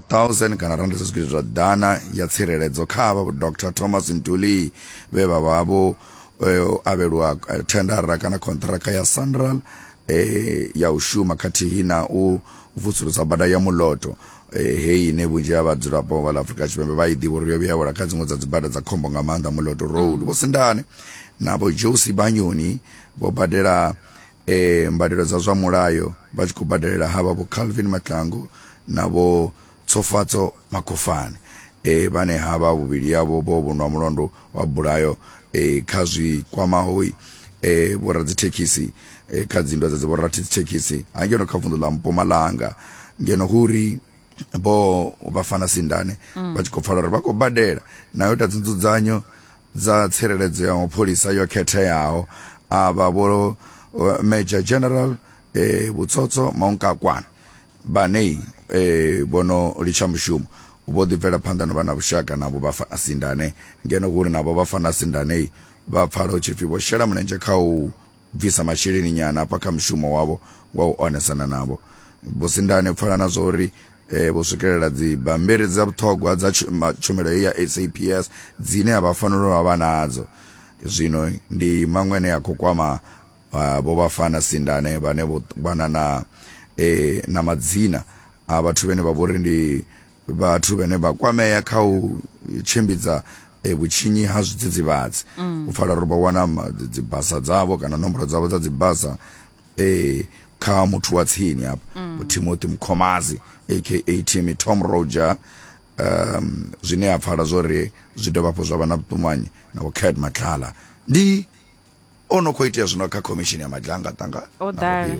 1000 kana rannda dza zwigidi zwa ḓana ya tsireledzo kha vha Dr Thomas Ntuli vhe vha vha vho eh, avhelwa eh, thendara kana khonṱhiraka ya Sanral eh, ya u shuma khathihi na u vusulusa bada ya muloto eh, heyi ine vhunzhi ha vhadzulapo vha ḽa Afrika Tshipembe vha i ḓivha uri yo vhuya wela kha dziṅwe dza dzibada dza khombo nga maanḓa muloto road vho sindane na vho Josi Banyoni vho badela E, mbadelo dza zwa mulayo vha tshi khou badelela havha vho Calvin Mahlangu na vho Tshofatso Makhofhani e, vhane havha vhuvhili havho vho vhonwa mulandu wa bulayo e, kha zwi kwamaho e, vhoradzithekhisi e, kha dzinndwa dza dziborathekhisi ha ngeno kha vunḓu ḽa Mpumalanga ngeno hu ri vho Vhafana Sindane mm. vha tshi khou pfala uri vha khou badela nayo ta dzinzudzanyo dza tsireledzo ya mapholisa yo khetheaho a vha vho Major General eh, Butsotso Maungakwana vhane eh, vho no litsha mushumo vho ḓi bvela phanḓa no vha na vhushaka navho vha fana sindane ngeno uri navho vha fana sindane vha pfala hu tshipfi vho shela mulenzhe kha u bvisa masheleni nyana hafha kha mushumo wavho wa u onesana navho. Vhusindane pfala na zwa uri eh, vho swikelela dzibammbiri dza vhuṱhogwa dza tshumelo ya SAPS dzine a vha fanela u vha nadzo. Zwino ndi maṅwe ane a khou kwama ah, vho Vhafana Sindane vhane vho wana na, eh, na madzina a vhathu vhene vha vhori ndi vhathu vhane vha kwamea kha u tshimbidza e, vhutshinyi ha zwidzidzivhadzi mm. u pfala uri vho wana dzibasa dzavho kana nomboro dzavho dza dzibasa e, kha muthu wa tsini hafha mm. timothy mkhomazi aka timmy tom roger um zwine a pfala zwori zwi dovha hafhu zwa vha na vhuṱumanyi na vhukhad matlala ndi o no khou itea zwino kha khomishini ya maḓangaḓanga o ḓala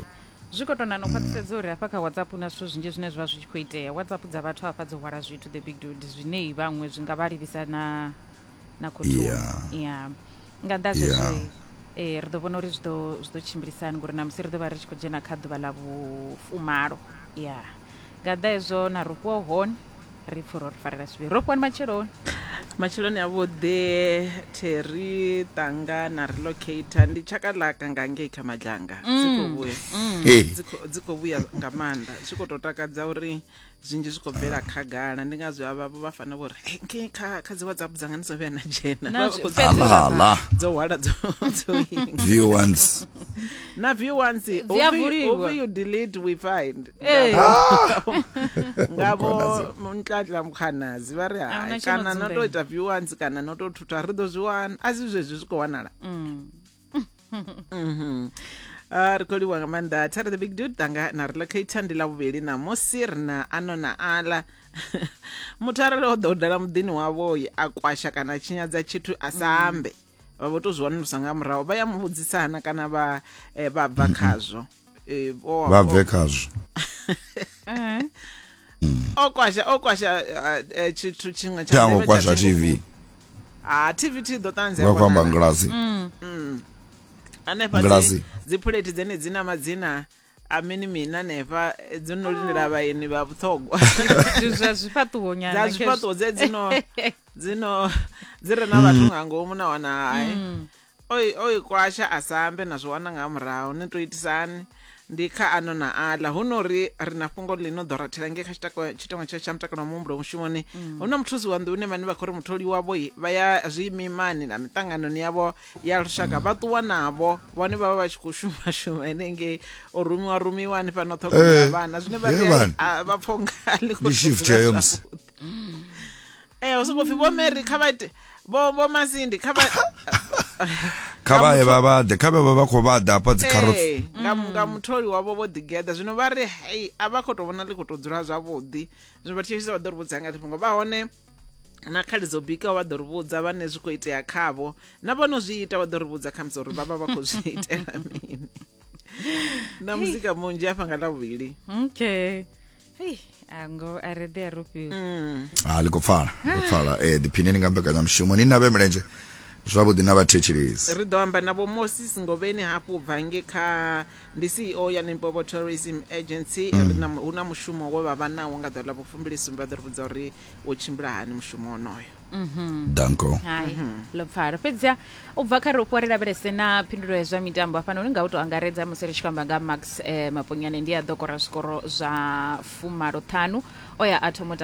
zwi khou tona no khwaṱhisedza uri hafha kha whatsapp hu na zwithu zwinzhi zwine zwi vha zwi tshi khou itea whatsapp dza vhathu hafha dzo hwala zwithu the big dude zwinei vhaṅwe zwi nga vha livhisa na na khothoni ya nga nnḓa zwezwo um eh, ri ḓo vhona uri zwi ḓo tshimbilisani ngori na musi ri ḓo vha ri tshi khou dzhena kha ḓuvha ḽa vhufumalo ya Nga ḓa hezwo na rofhiwa hone. Ri pfura uri farela zwivhi. Rofhiwani matsheloni. Matsheloni a vhuḓi Terry Tanga na relocator ndi tshaka ḽaka nga ngei kha Madlanga mm. dzi khou vhuya mm. dzi khou vhuya nga maanḓa zwi khou tou takadza uri zwinzhi zwi khou bvela khagala ndi ngazwo avhavho vha fanela vho ri ngei kha kha dzi whatsapp dzanga ndi dzo vhuya na dzhena dzo hwala dzo na view once you delete we find Hey. ngavo muntladla mukhanazi vha ri Ahuna hai tshino kana no to dzumbela. ita viewans kana no to thutha ri ḓo zwi wana a si zwezwi zwi khou wanala Mm. Mhm. Ah, ri khou livhuwa nga maanḓa thare the big dude tanga na ri locator ndi ḽa vhuvhili ṋamusi ri na ano na aḽa muthu arali o ḓa u dala muḓini wavhoi a kwasha kana a tshinyadza tshithu a sa ambe vha vho to zwi wanulusa nga murahu vha ya mu vhudzisa hana kana vha eh, vha bva khazwo eh, vha bve khazwo eh. hmm. o kwasha o kwasha eh, tshithu tshiṅwe tsha ndeme kwasha tv ha tv ti ḓo ṱanzia vha kwamba ngilasi hmm. hmm. hanefha dzipuleti dzene dzi na madzina amini mina nefa dzo no lindela ah. vhaeni vha vhuṱhogwa zwa zwifhaṱuwo nyana dza zwifhaṱuwo dze dzino dzino dzi re na vhathu nga ngomu na wana hai mm. oi oi kwasha a sa ambe na zwi wana nga murahu ni to itisani ndi kha ano na aḽa hu no ri ri na fhungo ḽi no ḓo rathela nge kha tshitako- tshitengo tsha tsha mutakalo wa muhumbulo mushumoni hu na muthusi wa nḓuni vhane vha khou ri mutholi wavho i, vha ya zwiimimani na miṱanganoni yavho ya lushaka vha ṱuwa navho vhone vha vha vha tshi khou shuma shuma henengei u rumiwa rumiwa hanefha no ṱhogomela Eh, vhana zwine vha he ri vhana. a- vha pfha unga a ḽi khou Ndi shift tshimbila heyo musi. zwavhuḓi. ee hu sokou pfi vho mary kha vha ite vho vho masindi kha vha kha vha ye vha vha ḓe kha vhe vha vha khou vha ḓa hafha dzi carrots Ee, nga nga mutholi wavho vho ḓigeḓa zwino vha ri hei a vha khou tou vhona ḽi khou tou dzula zwavhuḓi zwino vha thetshelesa vha ḓo ri vhudza nga ḽifhungo vha hone na khali dzo bikaho vha ḓo ri vhudza vhane zwi khou itea khavho na vho no zwi ita vha ḓo ri vhudza khamusi uri vha vha vha khou zwi itela mini na muzika munzhi afha nga ḽavhuvhili okay ngo a ri ḓe a rufhiwa mm. ha ah, ḽi khou pfala khou pfala eh diphineni nga mbekanyamushumo ni na vhe milenzhe zwavhuḓi na vhathetshelezi ri ḓo amba na vho moses ngovheni hafhu bva nge kha ndi ceo ya limpopo tourism agency mm. hu na mushumo we vha vha nawo nga ḓuvha ḽa vhufumbilisumbe vha ḓo ri vhudza uri wo tshimbila hani mushumo onoyo mhm. danko lupfaro fhedzia u bva kha ri ufhiwa ri lavhelese na phindulo ya zwa mitambo hafhano uri nga u tou angaredza musi ri tshi kwamba nga max eh, maponyane ndi a ḓo kora zwikoro zwa fumaloṱhanu o ya a thoma u tamba